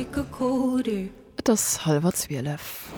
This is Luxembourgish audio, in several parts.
Et ass hallwer zwielef.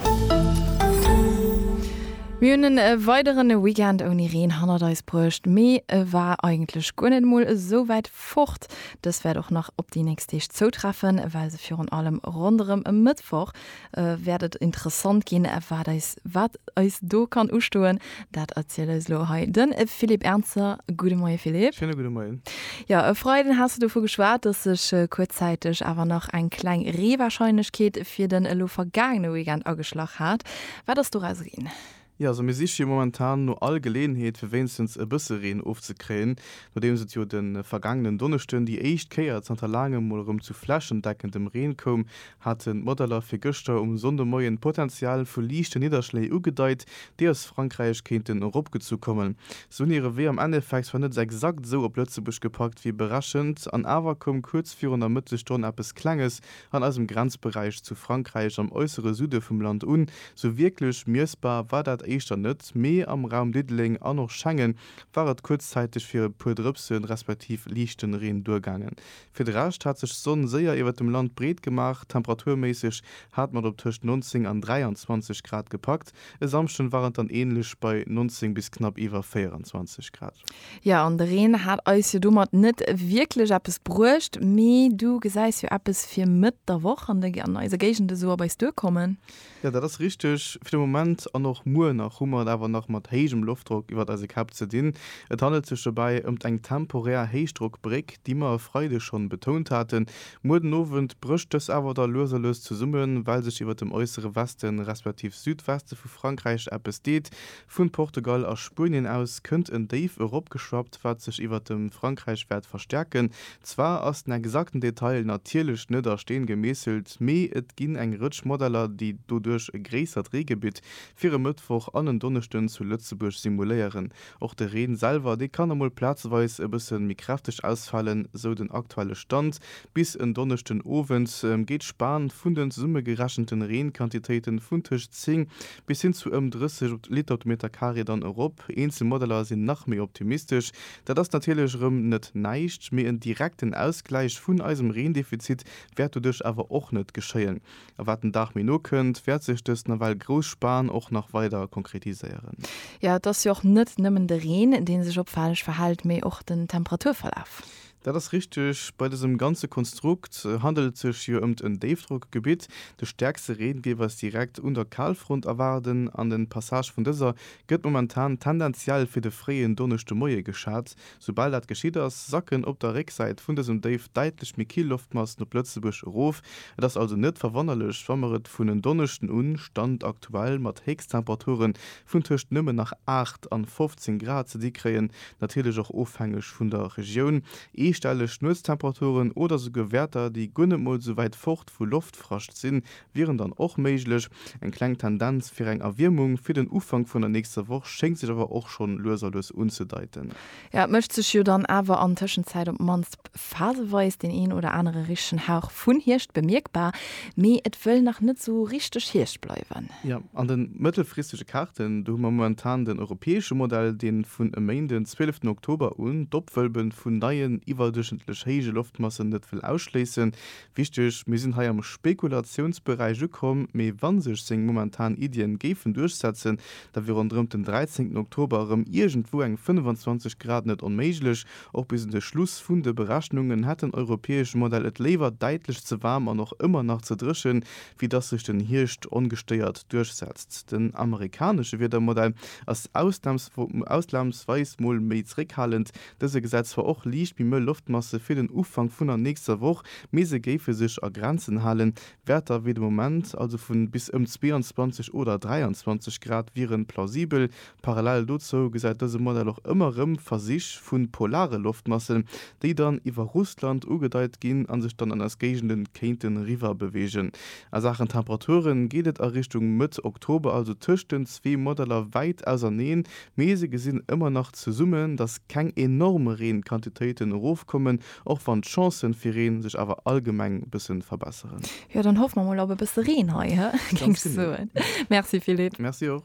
Mir hunn en weideren Weekend ouni Reen hannert eis bruecht, mee e war eigentlech guer net mol esou wäit fort. Dëst wäert och nach op déi nächst Deeg zoutreffen, well se virun allem ronderëm e Mëttwoch wäert et interessant ginn, wat eis do kann ustoen. Dat erziel eis elo hei den Philippe Ernzer. Gudde Moie Philippe. Schéine gudde Moien. Jo, e Freiden has du dovu geschwat, datt sech kuerzzäiteg awer nach eng kleng Reewarscheinlechkeet fir den elo vergaangene Weekend ageschlach hat. Wat ass doraus ginn? Jo, also mir siche jo momentan no all Geleeënheet fir wéinstens e bësse Reen ofzekréien, nodeems et jo de vergaangenen Donneschden déi éischt Kéier zanter laangem mol erëm zu flächendeckendem Reen koum, haten d'Modeller fir gëschter um Sonndemoien d'Potential vu liichte Nidderschléi ugedeit, déi aus Frankräich kéinten eropgezu kommen. Se hunn hire Wee am Endeffekt zwar net exakt esou op Lëtzebuerg gepackt wéi berechent, an awer koum kuerz virun der Mëttesstonn eppes Klenges an eisem Grenzberäich zu Frankräich am äussere Süde vum Land un. Sou wierklech miessbar war dat éischter net, mee am Raum Diddeleng an och Schengen war et kuerzzäiteg fir e puer Drëpse respektiv liichten Reen duergaangen. Fir de Rescht hat sech d'Sonn séier iwwert dem Land breet gemaach. Temperaturméisseg hat mat op tëscht 19 an 23 Grad gepackt. E Samschden war et dann änlech bei 19 bis knapp iwwer 24 Grad. Jo, an de Reen hat eis jo domat net wierklech eppes bruecht. Mee du gesäis jo eppes fir Mëtt der Woch an eise Géigende sou op eis duerkommen? Jo, dat ass richteg. Fir de Moment an och muer nach hu mer et awer nach mat héijem Loftdrock iwwert eise Käpp ze dinn. Et handelt sech dobäi ëmt eng temporär Héichdrockbréck, déi mer e Freide schonn betount haten. Muer den Owend brécht dës awer da lues a lues zesummen, well sech iwwert dem äussere Weste respektiv Südweste vu Frankräich eppes deet. Vun Portugal a Spuenien aus kënnt en Déif eropgeschwappt, wat sech iwwert dem Frankräich wäert verstärken. Zwar ass den exakten Detail natierlech net a Steen gemeesselt, mee et ginn eng Rëtsch Modeller, déi doduerch e gréissert Reegebitt fir e Mëttwoch an en Donneschden zu Lëtzebuerg simuléieren. Och de Reen selwer, dee kann emol plazeweis e bësse méi kräfteg ausfalen, sou den aktuelle Stand. Bis en Donneschden Owend geet d'Span vun de zesummegerechenten Reenquantitéiten vun tëscht 10 bis hin zu ëm 30 Liter op de Meter Carré dann erop. Eenzel Modeller sinn nach méi optimistesch. Dat ass natierlech erëm net näischt, mee en direkten Ausgläich vun eisem Reendefizit wäert doduerch awer och net geschéien. A wat den Dag méi no kënnt, wäert sech dës nawell grouss Span och nach weider konkretiséieren. Jo, et ass jo och net nëmmen de Reen, dee sech opfälleg verhält, mee och den Temperaturverlaf. Dat ass richteg. Bei dësem ganze Konstrukt handelt et sech jo ëmt en Déifdrockgebitt. De stäerkste Reen géif eis direkt un der Kalfront erwaarden an den Passage vun dëser gëtt momentan tendenziell fir de fréien Donneschdemoie geschat. Soubal dat geschitt ass, sacken op der Récksäit vun dësem Déif däitlech méi kill Loftmassen op Lëtzebuerg erof. Et ass also net verwonnerlech, wa mer et vun en Donneschden un, Stand aktuell, mat Héchsttemperature vun tëscht nëmmen nach 8 an 15 Grad ze di kréien, natierlech och ofhängeg vun der Regioun. Eestelleg Nuetstemperaturen oder souguer Wäerter, déi guer net mol esou wäit fort vu Loftfrascht sinn, wieren dann och méiglech. Eng kleng Tendenz fir eng Erwiermung fir den Ufank vun der nächster Woch schéngt sech awer och schonn lues a lues unzedeiten. Et mécht sech jo dann awer an Tëschenzäit op d'mannst phaseweis deen een oder anere richtegen Hauch vun Hierscht bemierkbar, mee et wëll nach net sou richteg Hierscht bleiwen. Jo, an de mëttelfristege Kaarten, do hu mer momentan den europäesche Modell, dee vun e Méinden, den 12 Oktober un, d'Opwëlben vun neien iwwerdurchschnëttlech héije Loftmassen net wëll ausschléissen, Wichteg, Mir sinn hei am Spekulatiounsberäich ukomm, mee wa sech seng momentan Iddien géifen duerchsetzen, da wier ronderëmt den 13 Oktober erëm iergendwou eng 25 Grad net onméiglech. Och bis un de Schluss vun de Berechnungen hätt den europäesche Modell et léiwer däitlech ze waarm an och ëmmer nach ze dréchen, wéi dass sech den Hierscht ongestéiert duerchsetzt. Den amerikanesche Wiedermodell ass ausnamsweis mol méi zréckhalend, Dëse gesäit zwar och liicht méi mëll Loftmasse fir den Ufank vun der nächster Woch, mee se géife sech a Grenzen halen. Wäerter wéi de Moment, also vu bis ëm 22 oder 23 Grad, wiere plausibel. Parallel dozou gesäit dëse Modell och ëmmer rëm Versich vu polare Loftmassen, déi dann iwwer Russland ugedeit ginn a sech dann an eis Géigende kéinte riwwerbewegen. A Saachen Temperaturen geet et a Richtung Mëtt Oktober also tëscht den zwee Modeller wäit auserneen, Mee se gesinn ëmmer nach zesummen, datt keng enorm Reenquantitéiten erofkommen, och wann d'Chancen fir Reen sech awer allgemeng bëssen verbesseren. Jo, dann hoffe mer mol op e bësse Reen hei, he? Géing ech soen. Merci Philippe. Merci och.